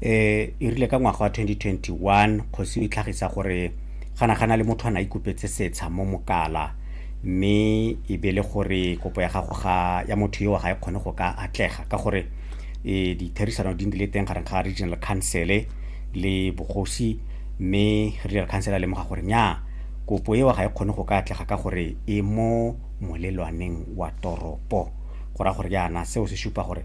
eh e rile ka ngwaga wa 2021 kgosi e tlhagisa gore gana gana le motho a na ikopetse setsha mo mokala mme e be le gore kopo ya gago ga ya motho eo ga e kgone go ka atlega ka gore e ditherisano di ndile teng gareng ga regional council le bogosi mme regional council a lemoga gore nya kopo eo ga e kgone go ka atlega ka gore e mo molelwaneng wa toropo go ra gore yana seo se supa gore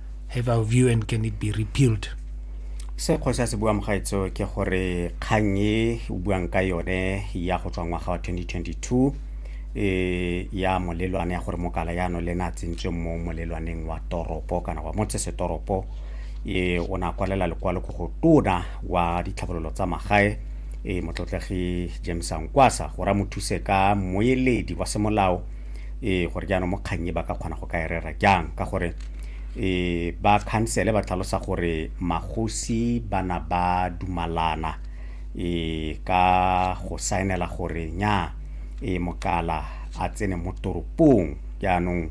Have our view and can it be repealed? se kgosi a se buang gaetso ke gore kgang e o buang ka yone ya go tswa ngwaga wa 2022 e ya molelwane ya gore mokala yano le ne a tsentsweng mo molelwaneng wa toropo kana wa motsesetoropo e o ne a kwalela lekwalo ko go tona wa ditlhabololo tsa magae e motlotlegi james ankwasa gore a mo thuse ka moeledi wa semolao e gore jaanong mo kgang e ba ka kgona go ka e rera jang ka gore e ba khansele ba tlhalosa gore magosi ba na ba dumalana e ka go saenela gore nya e mokala a tsene mo toropong jaanong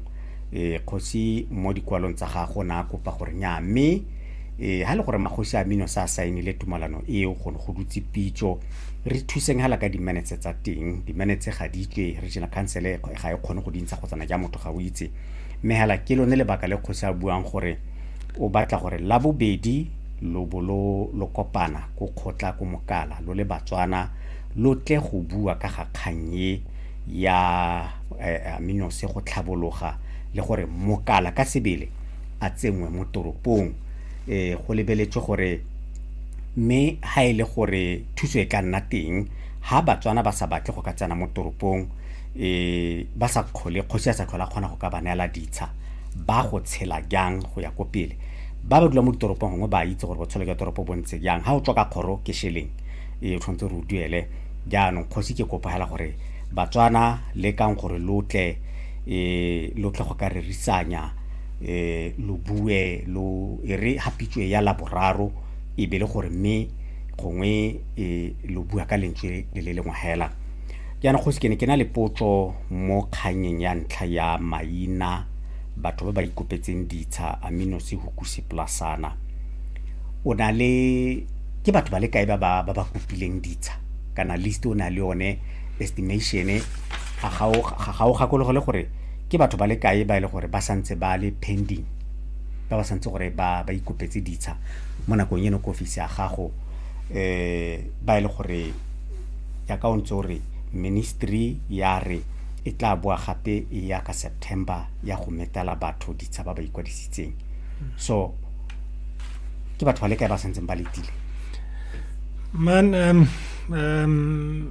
e kgosi mo dikwalong tsa gago na kopa gore nya mme e ha le gore magosi a mino sa saenile tumalano eo go go dutse pitso re thuseng hala ka di-minutes tsa teng di-minutes ga di tle regional council e ga e kgone go dintsha kgotsana ja motho ga o itse mme hala ke lone lebaka le kgosi a buang gore o batla gore la bobedi lo bo lo lo kopana ko kgotla ko mokala lo le batswana lo tle go bua ka ga kgang e ya eh, aminose go tlhabologa le gore mokala ka sebele a tsenngwe mo toropong eh go lebeletswe gore Mme ha e le gore thuso e ka nna teng, ha Batswana ba sa batle go ka tsena mo toropong, ba sa kgole, kgosi a sa tlhole a kgona go ka ba neela ditsha, ba go tshela jang go ya ko pele? Ba ba dulang mo ditoropong gongwe ba itse gore botshelo jwa toropo bo ntse jang. Ha o tswa ka kgoro ke šeleng, o tshwanetse gore o duele. Jaanong kgosi ke kopa fela gore Batswana lekang gore lo tle lo tle go ka rerisanya. eh lo bue lo e re hapitswe ya laboraro e be le gore mme gongwe e lo bua ka lentswe le le lengwe hela jaanong kgosi ke ne ke na le potso mo kganyeng ya ntlha ya maina batho ba ba ikopetseng ditsha aminose hukuse plasana o na le ke batho ba le kae ba ba ba kopileng ditsha kana list o na le one estimation a ga o gakologelwe gore ke batho ba le kae ba e le gore ba santse ba le pending ba ba santse gore ba ba ikopetse ditsha mo nakong eno ko ofisi ya gago um ba e le gore yaka o ntse o re ministry ya re e tla boa gape e ya ka september ya go metela batho ditsha ba ba ikwadisitseng so ke batho ba le kae ba santseng ba letile man um, um,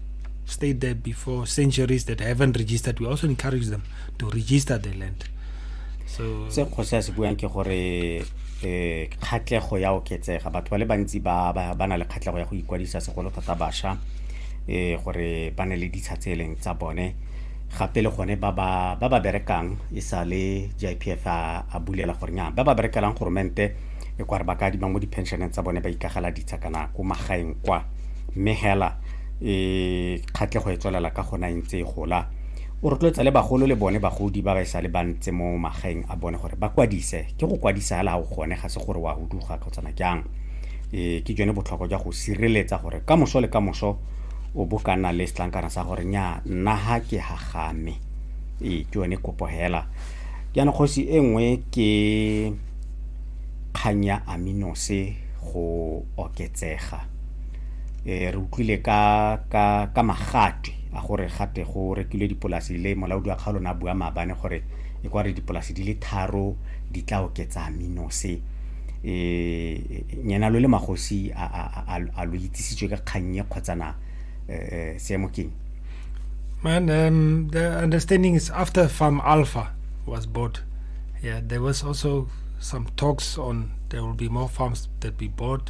stayed there before centuries that haven't registered we also encourage them to register the land so se kgosi a se buang ke gore eh khatlego ya oketsega batho ba le bantsi ba ba na le khatlego ya go ikwadisa segolo thata basha eh gore ba ne le ditsha tse e leng tsa bone gape le gone ba ba ba ba berekang e sa le JPF a bulela gore nya ba ba berekelang goromente e kware ba ka di ba mo di pensioneng tsa bone ba ikagala ditsha kana ko magaeng kwa mme hela e kgatlhego e tswelela ka gona e ntse e gola o rotloetsa le bagolo le bone bagodi ba ba e sa le bantse mo magaeng a bone gore ba kwadise ke go kwadisa hela ga o gone ga se gore wa huduga kgotsana jang e ke jone botlhokwa jwa go sireletsa gore ka moso le ka moso o bo ka nna le setlankana sa gore nya nna ha ke ha game e ke yone kopo hela jaanong kgosi e nngwe ke kgang ya aminose go oketsega eh re utlwile ka ka ka magate a gore gate go rekilwe dipolasi le molaodi wa kgaolo na bua maabane gore e kware dipolasi di le tharo di tla oketsa minose eh nyena lo le magosi a a a, a lo itsisitswe ka kgannye kgotsa na eh seemo keng Man, um, the understanding is after Farm Alpha was bought, yeah, there was also some talks on there will be more farms that we bought.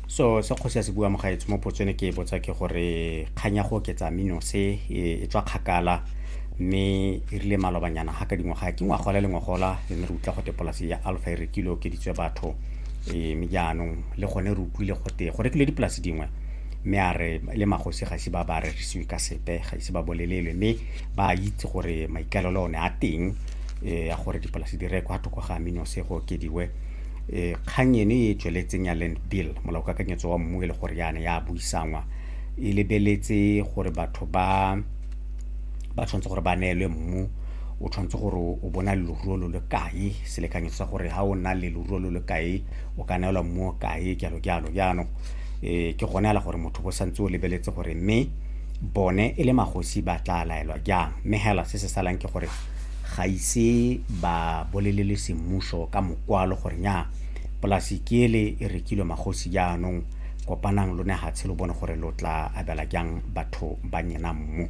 so se kgosi a se bua mogaetsho mo potso ne ke e botsa ke gore kgang ya go oketsa mino se e, e tswa kgakala mme e rile malobanyana ga ka dingwaga ke ngwagola le ngwagola re ne re utlwa gote polase ya alpha e rekile okeditswe batho e, mme jaanong le gone re utlwile gote go rekilwe dipolase dingwe mme a re le magosi ga ise ba ba rerisiwe ka sepe ga ise ba bolelelwe mme ba itse gore maikalelo one a teng um ya gore dipolase di rekwa thoko ga amino se go okediwe e kgang eno e tsweletseng ya land bill molaokakanyetso wa mmu e le gore yana ya buisanngwa e lebeletse gore batho ba ba tshwanetse gore ba neelwe mmu o tshwanetse gore o bona leruo lo le kae selekanyetso sa gore ga o na le leruo lo le kae o ka neelwa mmu o kae jalo jalo jaanong um ke gone ala gore motho bo santse o lebeletse gore mme bone e le magosi ba tla laelwa jang mme hela se se salang ke gore ga ise ba bolelele semmuso ka mokwalo gore nya polasi ke ele e rekilwe magosi jaanong kopanang lo ne hatshe lo bone gore lo tla abela jang batho ba nyena mmu.